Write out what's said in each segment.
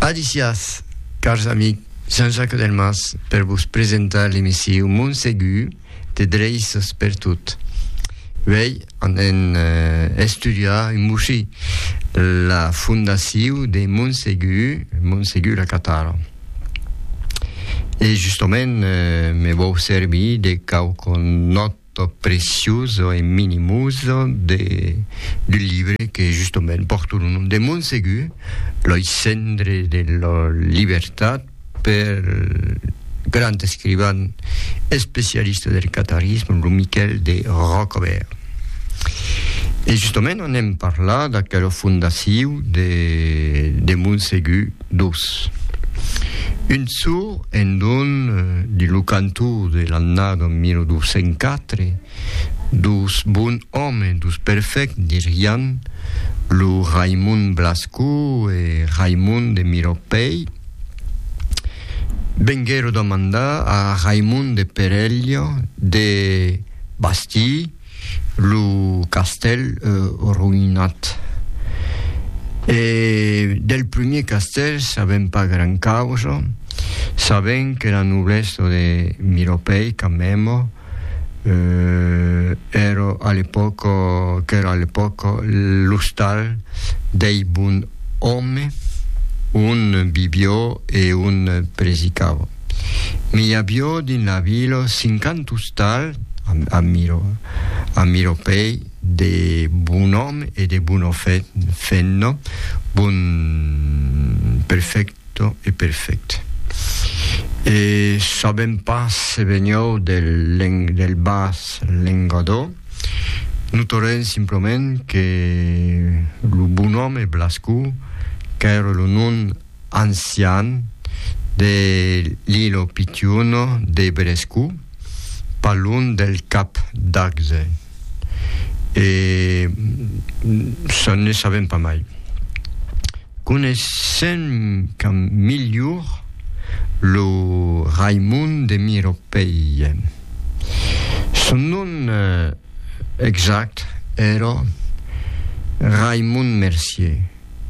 Alicias, cars amic Jean-Jacques Delmas per vos presentar l'emissiu Montsegur te dreisses per tot. Vei an en eh, estudiar un moshi la fondaciu de Montsegur, Montsegur la Catara. E justament eh, me vau servir de quauqu'un nòt to precioso e minimoso de, d'un libre que justement pòrto lo nom de Montsegur, loi cendre de la libertat per grand escrivan especialista del catarisme, lo Miquèl de Rocobèrt. E justement anem parlar d'aquela fondaciu de, de Montsegur, dos. Un çò en don de lo cantor de l'annada 1904, dos bon òmes, dos perfècts, dirián lo Raimond Blasco e Raimond de Miropèi, venguèron demandar a Raimond de Perelha de bastir, lo castèl roïnat. E del primier castèl sabèm pas gran causa, sabèm que la noblesa de Miropèi, Camèmo, èra a l'epòca, qu'èra a l'epòca l'ostal dei bon òme, on bivió e on presicava. Me i avió dins la vila cinquanta ostal amiropei de bon òm e de bona fenna, bon perfècto e perfèct. E sabèm pas se venió del bas lengadó, no torèm simplement que lo bon òm e Blascò, qu'ère lo nom ancian de Lillo Pitiuno de Brescu, pas lunh del Cap d'Agde. E çò ne sabèm pas mai. Coneissèm qu'a milhor lo Raimond de Miropèia. Son nom exact èra Raimond Mercier.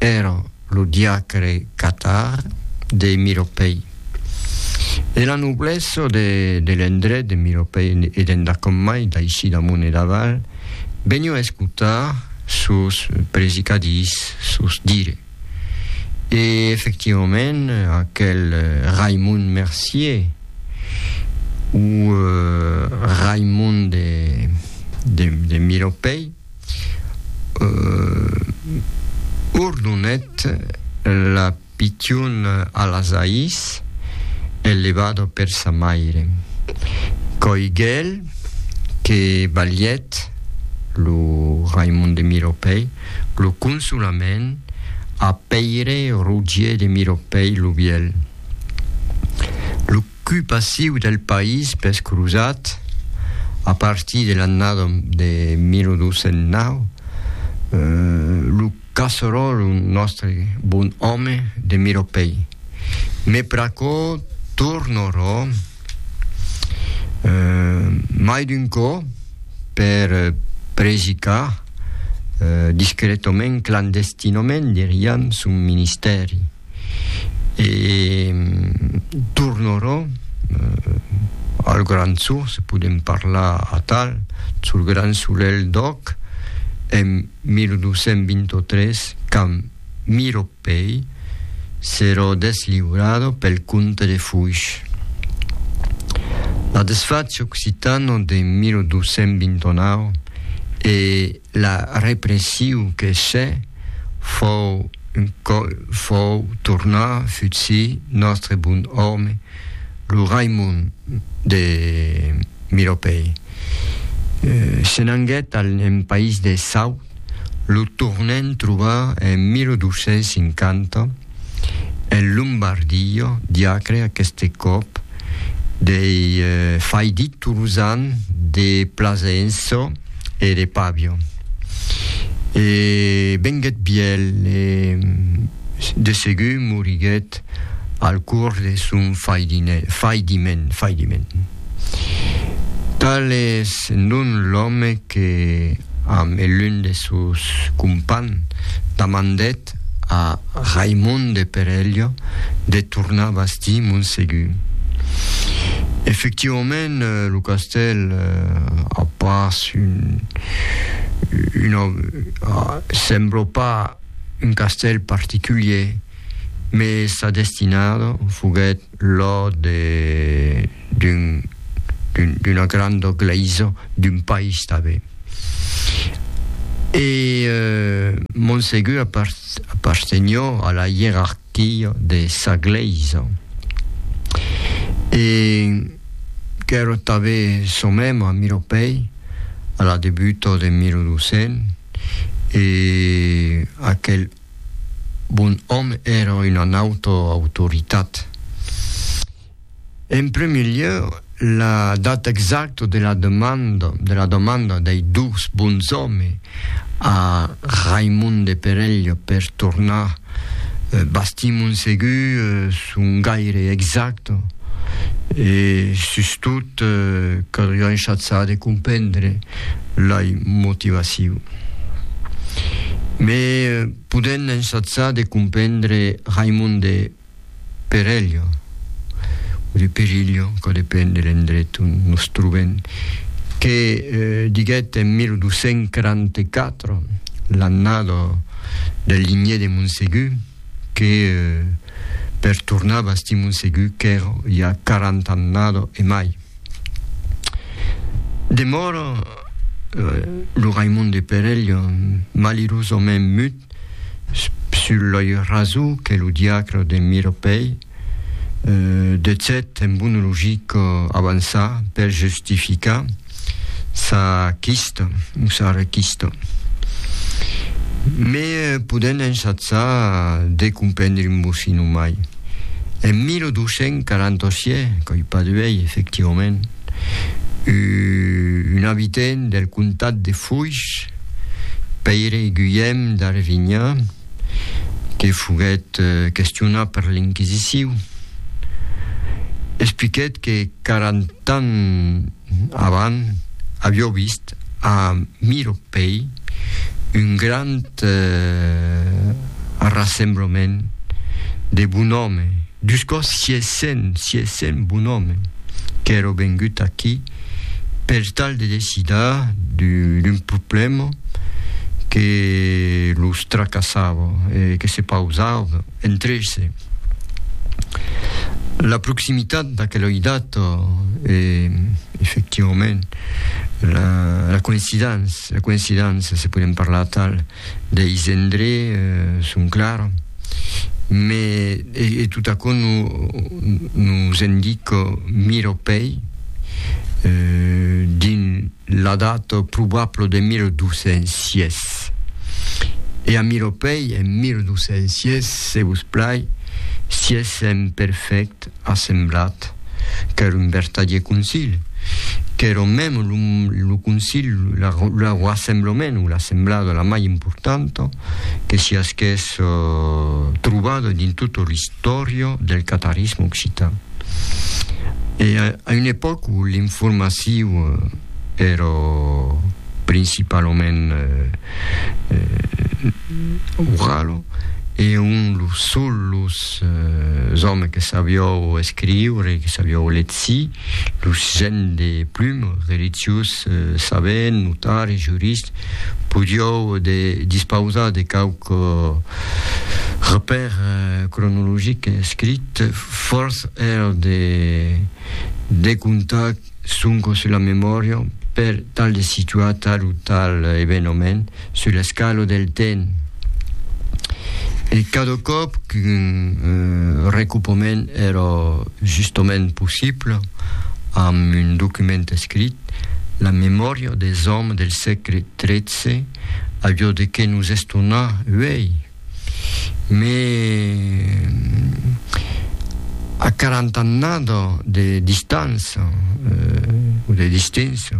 Èra lo diacre catar de Miropèi. E la noblessa de l'endret de Miropèi e d'endacòm mai, d'aicí damont e d'aval, venió escotar sos predicadís, sos dire. E efectivament, aquel Raimond Mercier, o Raimond de Miropèi, Ourdonet la pichon a las ais e levado per sa maire. Coigel que balhèt lo Raimon de Miropèi lo consolament a Pèire Rogier de Miropèi lo Vièlh. Cui passiu del país pes crosat, a partir de l'annada de 1209, lo casseròl, un nòstre bon òme de Miropèi. Me pr'aquò tornarò mai d'un còp per predicar, discretament, clandestinament, diriam, son ministèri. e tornarò al Grand Sur, se podem parlar atal, sul Grand Solelh d'Òc, en 1223, quand Miró Pei serò desliurado pel comte de Foix. La desfach occitano de 1229 e La repression que se fòu un còp fòu tornà futsir nòstre bon òme, lo Raimond de Miropèi. Se n'anguèt al en país de Saut, lo tornèn trobar en 1250, En Lombardia, diacre aqueste còp dei fai dit tolosan de Plasencia e de Pavia. E venguèt bièl e de segur moriguèt al cors de son faidiment, faidiment. Tal es non l'òme que, amb lun de sos compans, damandèt Prèst a Raimond de Perello de tornar bastir Montsegur. Efectivament, euh, lo castèl euh, a pas un, una, euh, sembla pas un castèl particulier, mais sa destinada foguèt Lo de d'un d'una granda glèisa d'un país tanben. E Montsegur apartenió a la ierarquia de sa glèisa e qu'èra tanben çò mèm a Miropèi a la debuta de 1200 e aquel bon òme èra una nauta autoritat. En prumèr lieu, la data exacta de la demanda, de la demanda dei dus bons òmes a Raimond de Perelha per tornar, bastim un segur son gaire exacta e sustot caldriá un chatsar de comprendre lei motivacion. Me podèn ensatzar de comprendre Raimond de Perello, o de Perillo, que depèn de l'endret on nos trobèn, que diguèt en 1244, l'annada del ligné de Montsegur, que per tornar bastir Montsegur qu'èra ja 40 annada e mai. Demòra lo Raimond de Perelha, malirosament mut, sul loi raso que lo diacre de Miropèi detzèt en bona logica avançar per justificar sa quista o sa requista. Me podèm ensatzar de comprendre un bocin o mai. En 1247, qu'ei pas d'uei, efectivament, un abitent del comtat de Foix, Pèire Guilhèm d'Arvinha, que foguèt questionat per l'Inquisiciu, expliquèt que quaranta ans Avant, avió vist a Miropèi un grand arrassemblament de bonòme, dus còps sies cent, sies cent bonòme qu'èro vengut aquí per tal de decidar d'un problèma que los tracassava e que se pausavan entre se. La proximitat d'aquela idat e, efectivament, la, la coïncidence, la coïncidence, se podem parlar tal, deis endré eh, son clar, me, e, e tot aquò no, nos indica miropei eh, dins la data probabla de 1206. E a Miropei en 1206, se vos plai, si es en perfèct assemblat, qu'èra un vertadier concili, qu'èra mèm lo concili, lo rassemblament o l'assemblada la mai importanta, que si as qu'es trobada dins tota l'istòria del catarisme occitan. E a una epòca où l'informaciu èra principalament orala, e ont los sols los òmes que sabiou escriure, que sabiou letzir, Los gents de plum, reliciós, sabent, notari, jurist, podiou de dispausar de quauque repèr cronologic escrit, fòrç èra de decontar sonque sus la memòria per tal de situar tal o tal evenament, Sur l'escalo del ten. E cada còp qu'un recopament èra justament possible, amb un document escrit, la memòria des òmes del sègle tretze aviá de qué nos estonar, uèi! Mès a quarant'annada de distança, o de distància,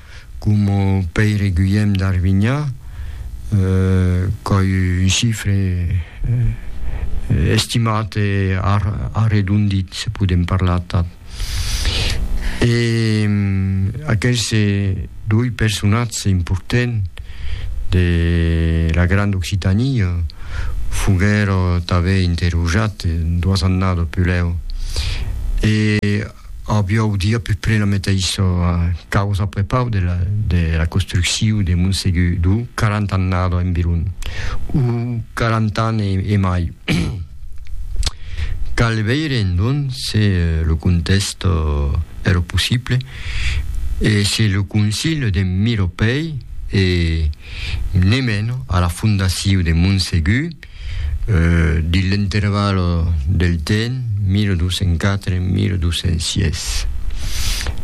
coma Pèire Guilhèm d'Arvinhà, qu'ai un chifre estimat e arredondit, se podem parlar atau. E aquerse doi personatges importants de la Granda Occitania foguèron tanben interrojates duas annadas pulèu. E Aviáu dit a peu près la meteissa causa a prepau de la de la construcciu de Montsegur d'o quarant'annada environ, o quarant'an e e mai. Cal veire endonc se lo contèst èra possible e se lo Concile de Miropèi e, ne meno, a la fondaciu de Montsegur, dins l'interval del temps 1204-1206.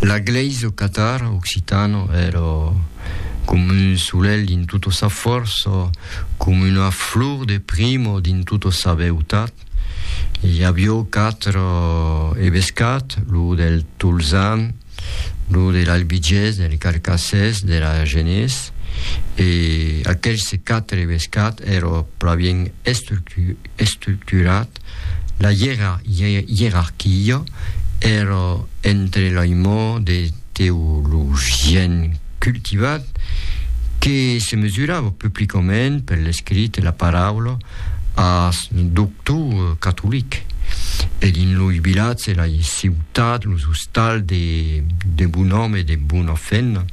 La glèisa o catar occitano èra com un solelh dins tota sa fòrça, com una flor de primo dins tota sa beutat. I avió quatre evescats, lo del Tolzan, lo de l'albigés, del carcassés, de l'agenés, e aquelhs quatre bescat èra plan estructurat, la ierarquia èra entre l'aimò de teologien cultivat que se mesurava publicament per l'escrit e la paraula ath doctor catolic, e dins loi vilatge, lai ciutat, los tal de de bon òme e de bona femna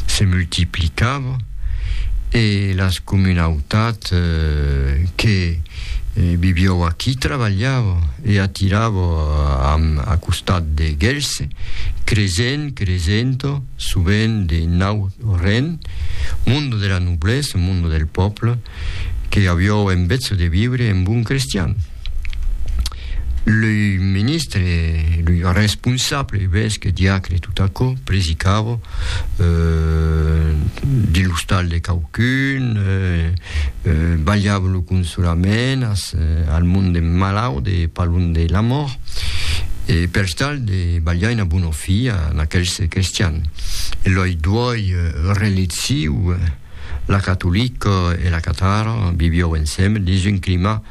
se multiplicava e las comunautats que vivió aquí trabalhava e atirava amb a costat de Gelse, cresent, cresent, sovent de nau ren, monde de la noblesse, monde del pòble, que avió en betz de vivre en bon crestian. Le ministre, le responsable, evesque, diacre, tot aquò, predicava euh, de l'ostal de quauqu'un, euh, euh, balhava lo consolament as, euh, al mond de malaut e pas lon de la mòrt, e per tal de balhar una bona fia en aquels cristians. E loi duòi euh, relectiu, La catolica e la catara vivió ensems dins un clima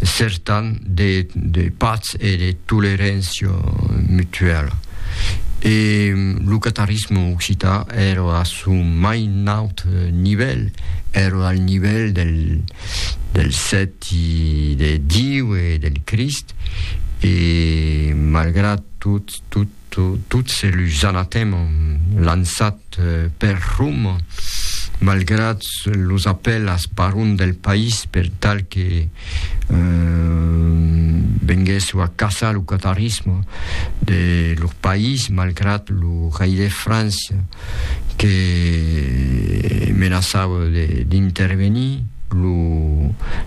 certan de, de patz e de toleréncia mutuala. E lo catarisme occità èra a son mai naut nivèl, èra al nivèl del, del sèti, de Diu e del Crist, e malgrat tot, tot, Tots los anatèmas lançats per Rum, malgrat los apèlas barons del país per tal que venguèsse a caçar lo catarisme de lor país, malgrat lo rei de França que menaçava d'intervenir,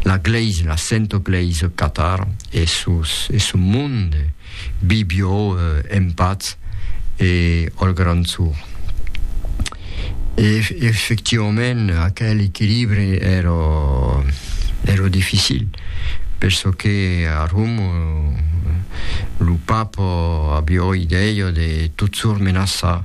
la glèisa, la santa glèisa catara e son monde. Bibiò en patz e al grand sor. E efectivament aquel equilibre èra èra dificil perçò que a Roma lo papa aviá idèia de tot sor menaçar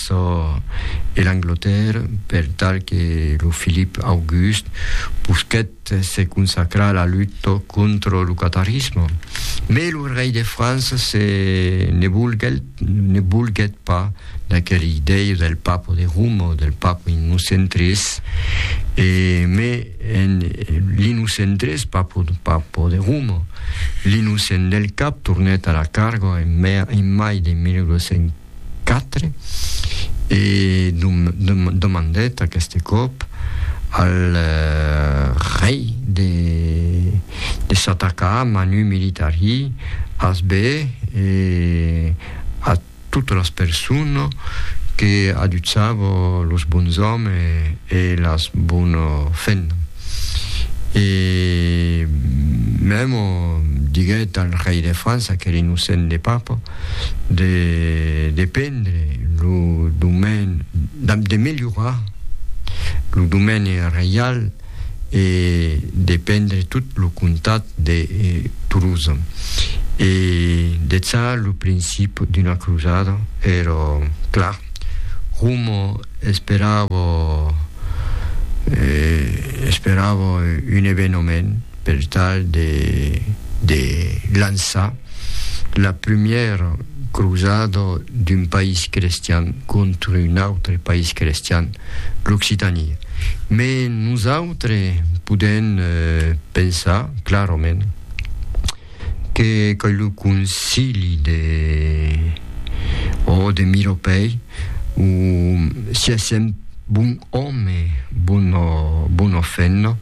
çò e l'Anglatèrra per tal que lo Filip August posquèt se consacrar a la luta contra lo catarisme. Mai lo rei de França se ne volguèt, ne volguèt pas d'aquela idèia del papa de Roma, del papa Innocent tres, e mai en l'Innocent tres, papa, papa de Roma, l'Innocent del Cap tornèt a la carga en, en mai de 1900. 4 e demandèt aqueste còp al rei de s'atacar a manu militari ath be e a totes las persones que adutzavan los bons òmes e las bones femnas. e mèmo diguèt al rei de França, qu'ère innocent de papa, de de prendre lo domaine, damb de melhorar lo domaine reial e de prendre tot lo comtat de Toulouse e deth ça lo principi d'una crosada, ère clar. Como esperavo esperavo un evenement per tal de de lançar la primièra crosada d'un país crestian contra un autre país crestian, l'Occitània. Me nosautres podèm pensar clarament Que qu'ei lo concili de o de Miropei o si es un bon òme bon o bon o femna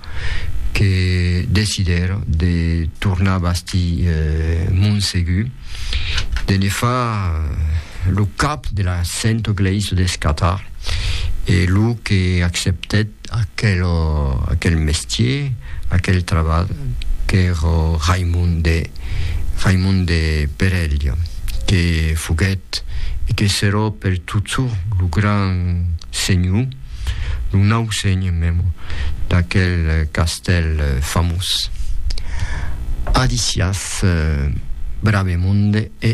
que decidèra de tornar bastir Monsegur de ne far lo cap de la Sento Glèisa d'Escatar e lo que acceptèt Aquel mestier, aquel trabalh qu'èra Raimond de Raimond de Perelha que foguèt e que serà per totjor lo grand senhor, lo nau senhor mèm d'aquel castèl famós. Adiciath Bravemonde e.